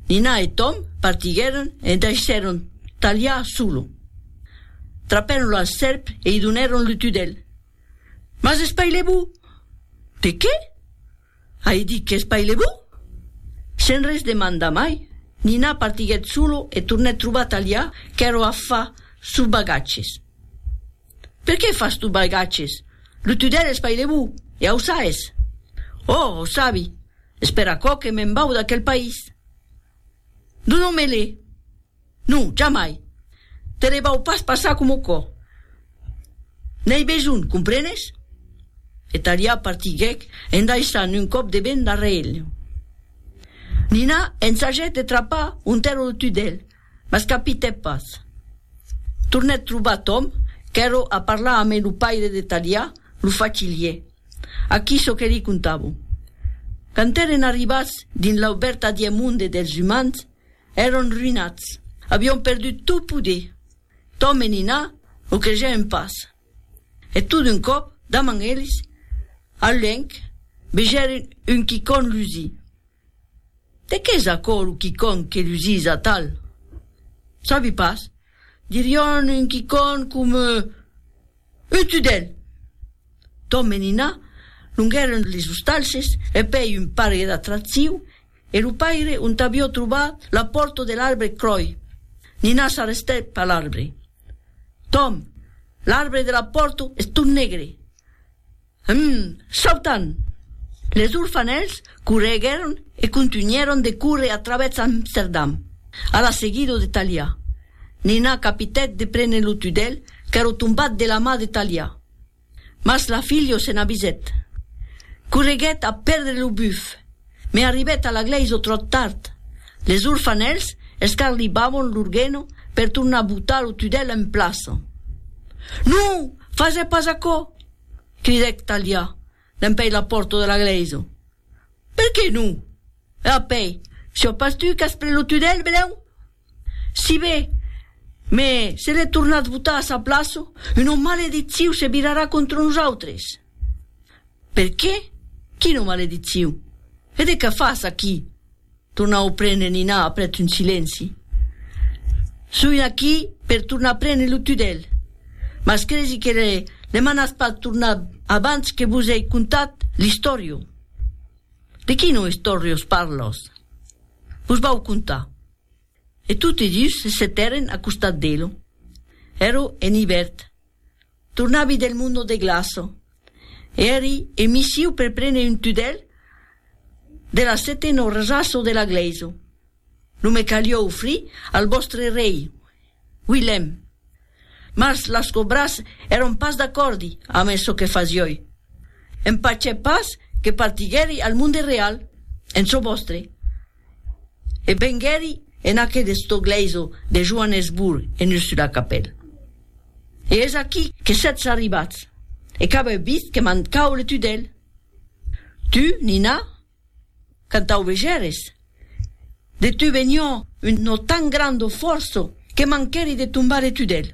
Nina e Tom partiguèron e daissèron Talià solo. Trapèron la sèrp e i donèron lo tudèl. Mas espailè-vo! De qué? Ai dit qu'espailè-vo! Sen res demandar mai, Nina partiguèt solo e tornèt trobar Talià qu'èra a far sos bagatges. Per qué fas tu balgatges? Lo tudèl es pailevou, e au saes. Oh, au sabi. Espèr aquò que me'n vau d'aquel país. Donon-me-le. Non, jamai. Te le vau pas passar coma au cò. N'ei besonh, comprenes? E Talià partiguèc en daissant un còp de vent darrèr el. Nina ensagèt de trapar un tèrra lo tudèl, Mas capitè pas. Tornèt trobar Tom, qu'èro a parlar amé lo paire de Talià, lo facilier, a qui çò que li contavo. Quand èren arribats dins l'aubèrt adiè monde dels umans, èron ruïnats, avion perdut tot poder. Tom e Nina lo cregèren pas. E tot d'un còp, damant eles, al luènh, vegèren un quicòn lusir. De qu'es aquò lo quicòn que lusís atal? Sabi pas. Dirion un quicòn coma un tudèl. Tom e Nina longèron les ostalhes e pèi un pargue d'atractiu e lo paire ont avió trobat la pòrta de l'arbre cròi. Nina s'arrestèp a l'arbre. Tom, l'arbre de la pòrta es tot negre. Hum! Sautant! Les orfanèls correguèron e contunhèron de córrer a travèrs Amsterdam, a la seguida de Talià. Nina capitèt de prene lo tudèl qu'èra tombat de la mà de Talià. Mas la filha se n'avisèt. Correguèt a pèrdre lo buf, me arribèt a la glèisa tròt tard. Les orfanèls escarlibavon lor geno per tornar botar lo tudèl en plaça. Non! Fasè pas aquò! Cridèc Talià dempèi la pòrta de la glèisa. Per qué non? E apèi, siò pas tu qu'as pres lo tunèl, Belèu? Si be, me se l'è tornat botar a sa plaça, una maledicciu se virarà contra nosautres. Per qué? Quina maledicciu? E de qué fas aquí? Tornar o prene Nina aprèp d'un silenci. Soi aquí per tornar prene lo tudèl. Mas cresi que le le manatz pas tornar abans que vos ei contat l'istòrio. De quino istòrios parlòs? Vos vau contar. E toti dus se setèren a costat d'elo. Èro en ivèrn. Tornavi del mundo de glaço. Eri e misiu per prene un tudèl de la sete no resaço de la glèiso. Lo me calió ofrir al vòstre rei, Wilhelm. Mas las cobras èron pas d'acòrdi amé çò que fasiói. Empachè pas que partiguèri al monde real en çò vòstre. e venguèri en aqueth de Stogleiso de Joanesburg en Ursula Capel. E es aquí que sètz arribats, e qu'avèu vist que m'an caule tu d'el. Tu, Nina? Quand tau vegères? De tu venió un no tan grando fòrço que manquèri de tombar de tu d'el.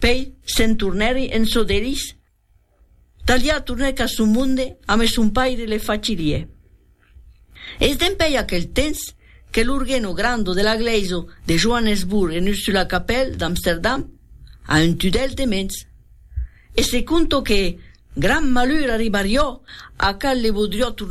Pei se'n tornèri en çò d'elis. Talià tornèc a son monde ame son paire le facirie. Es dempèi aquel tens que l'orgueno grando de la glèiso de Johannesburg en Ursulakapelle d'Amsterdam a un tudèl de mens. E se conto que, gran malur arribarió a cal le bodrió tornar